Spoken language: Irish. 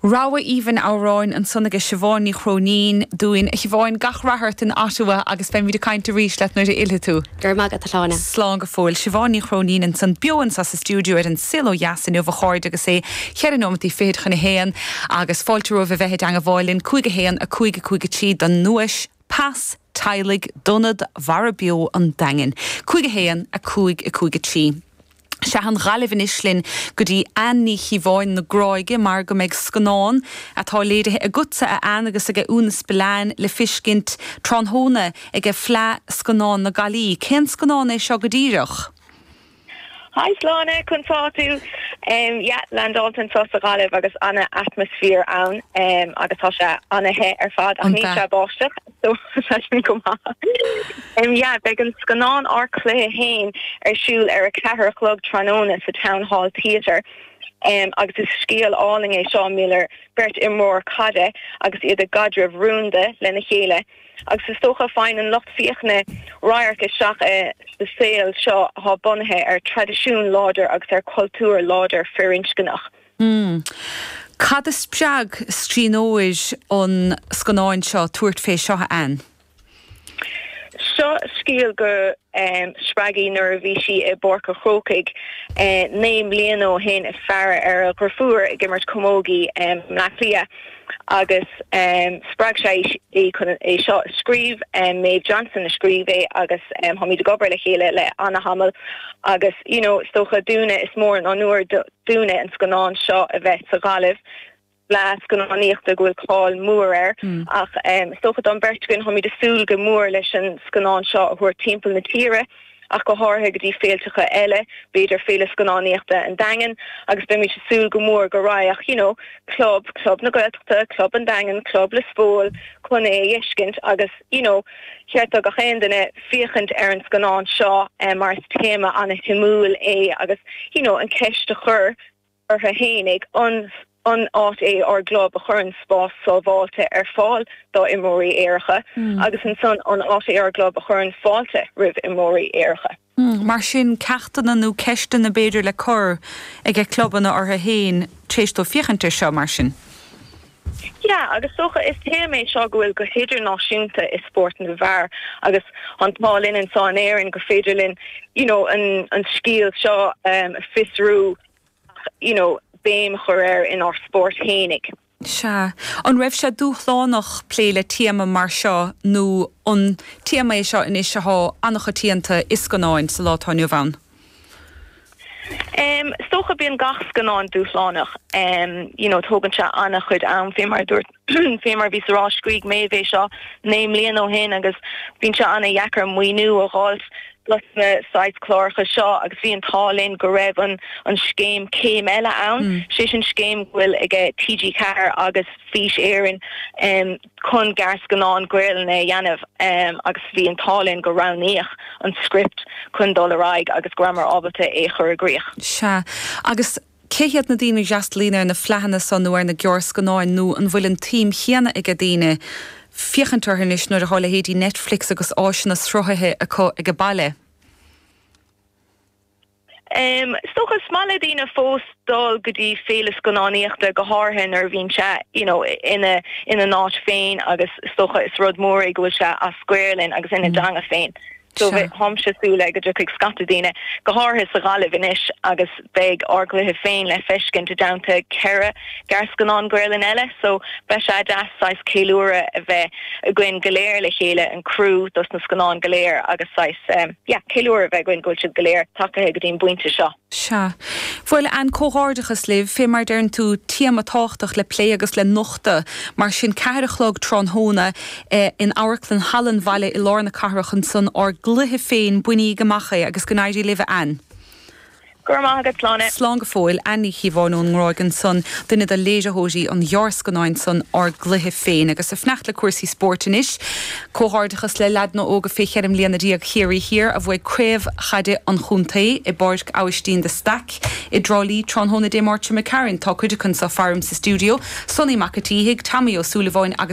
Rogha aoibhinn amhráin ansan aige Siobhán Ní Chróinín dúinn. A Shiobháin, gach rath ort in Ottawa agus beimid ag caint arís leat nuair a fhillfidh tú. Go raibh maith agat, a Shláine. Slán go fóill. Siobhán Ní Chróinín ansan beo anso sa stiúideo ar An Saol Ó Dheas inniu, a chairde, agus é cheithre nóimeataí fichid chun a haon agus fáilte romhaibh a bheith i dteangmháil linn, 5 1 5 5 3, don nduais Pas Teaghlaigh d'Ionad Mhara Beo an Daingin. 5 1 5 5 3. Sea, an Ghaillimh anois linn go dtí Anne Ní Chíobháin na Gráige mar go mbeidh scannán atá léirithe agatsa a Anne agus ag a Úna Spillane le feiscint tráthnóna ag a Fleadh Scannán na Gailí. Cén scannán é seo go díreach? Hi Sláine! Conas tá tú? Em yeah, i láthair anso sa Ghaillimh agus ana atmosphere ann em agus tá sé ana the ar fad ach níl aon bháisteach. So, sé sin go maith. Em yeah, beidh an scannán Ár Cluiche Féin ar siúl ar a ceathair a chlog tráthnóna sa Town Hall Theatre. Em agus is scéal álainn é seo mar gheall ar beirt imreoir caide agus iad i gcaidreamh rúnda lena chéile. Agus is dócha faigheann an lucht féachana radharc isteach i sa saol seo atá bunaithe ar traidisiún láidir agus ar chultúr láidir firinscneach. Hmm. Cad a spreag scríbhneoir an scannáin seo tabhairt fé seo, a Anne? So is cosúil go spreag í. Nuair a bhí sí i bPáirc an Chrócaigh naoi mbliana ó shin ag féachaint ar a drifiúr ag imirt camógaí i mBleá Cliath agus spreag sé í chun é seo a scríobh. Maeve Johnson a scríobh é agus táimid ag obair le chéile le an-tamall agus you know is dócha dúinne is mór an onóir dúinne an scannán seo a bheith sa Ghaillimh, fleadh scannánaíochta go bhfuil cáil mhór air, ach is dócha don bheirt againn, táimid ag súil go mór leis an scannán seo a thabhairt timpeall na tíre, ach go háirithe go dtí féilteacha eile, b'fhéidir Féile Scannánaíochta an Daingin, agus beimid ag súil go mór go raghadh you know club, club na Gaeltachta, club an Daingin, club Lios Póil, chun é a fheiscint agus you know. Cheart do gach aon duine féachaint ar an scannán seo mar is téama an-shuimiúil é agus you know an cheist a chur orthu fhéinig, an áit é ár gclub a chuireann spás sábháilte ar fáil dá imreoirí aeracha agus ansan an áit é ár gclub a chuireann fáilte roimh imreoirí aeracha? mar sin, ceachtanna nó ceisteanna b'fhéidir le cur ag a clubanna orthu féin tar éis dóibh féachaint air seo, mar sin. Yeah, agus dócha, is téama é seo go bhfuil go hidirnáisiúnta i spórt na bhfear agus an t-ádh linn anseo in Éirinn gur féidir linn you know an scéal seo a fiosrú ach you know béim a chur air inár spórt fhéinig. Sea. An raibh sé dúshlánach plé le téama mar seo nó an téama é seo anois athá an-choitianta i scannáin sa lá atá inniu ann? Is dócha, bíonn gach scannán dúshlánach, you know tógann sé an-chuid am, fé mar a dúirt, fé mar a bhí á rá, scrígh Méadhbh é seo naoi mbliana ó shin agus bíonn sé an-deacair maoiniú a dh'fháilt dos na saghas cláracha seo agus bhí an t-ádh linn go raibh an scéim Céim Eile ann, sé sin scéim go bhfuil ag TG4 agus Fís Éireann chun gearrscannáin Gaelainne a dhéanamh agus bhí an t-ádh linn gur roghnaíodh an script chun dul ar aghaidh agus go rabhamar ábalta é a chur i gcrích. Sea, agus Cé hiad na daoine a fhreastalaíonn ar na fleadhanna so nó ar na gearrscannáin nó an bhfuil an tsuim chéanna ag daoine féachaint orthu anois nuair atá leithéidí Netflix agus áiseanna sruthaithe acu ag a baile? Is dócha is maith le daoine fós dul go dtí féile scannánaíochta go háirithe nuair a bhíonn sé you know ina n-áit féin agus is dócha is rud mór é go bhfuil sé as Gaolainn agus ina dteanga féin. Táimse ag súil go dtiocfaidh scata daoine, go háirithe sa Ghaillimh anois agus beidh Ár gCluiche Féin le feiscint i dteannta ceithre ghearrscannán Gaolainne eile so beidh sé deas saghas ceiliúradh a bheith againn go léir le chéile, an criú dos na scannáin go léir agus saghas yeah ceiliúradh a bheith againn go bhfuil siad go léir tagaithe go dtí an bpointe seo. Sea. Bhuel, Anne, comhghairdeachas libh. Fé mar a deireann tú, téama tábhachtach le plé agus le nochtadh. Mar sin, ceathair a chlog tráthnóna in Amharclann Halla an Bhaile i lár na cathrach, ansan Ár gCluiche Féin, bainigí amach é, agus go n-éirí libh, a Anne. Go raibh maith agat. Slán. Slán go fóill, Anne Ní Chíobháin ón nGráig ansan, duine de léiritheoirí an ghearrscannáin san, Ár gCluiche Féin. Agus ag fanacht le cúrsaí spóirt anois. Comhghairdeachas le leaideanna óga fé cheithre mbliana déag Chiarraí Thiar a bhuaigh craobh chaide an chontae i bPáirc Abhaistín de Staic i dTrá Lí tráthnóna Dé Máirt seo caite Tá cuid acu anseo faram sa stiúideo, Sonny Mac a' tSíthigh, Tommy Ó Súilleabháin agus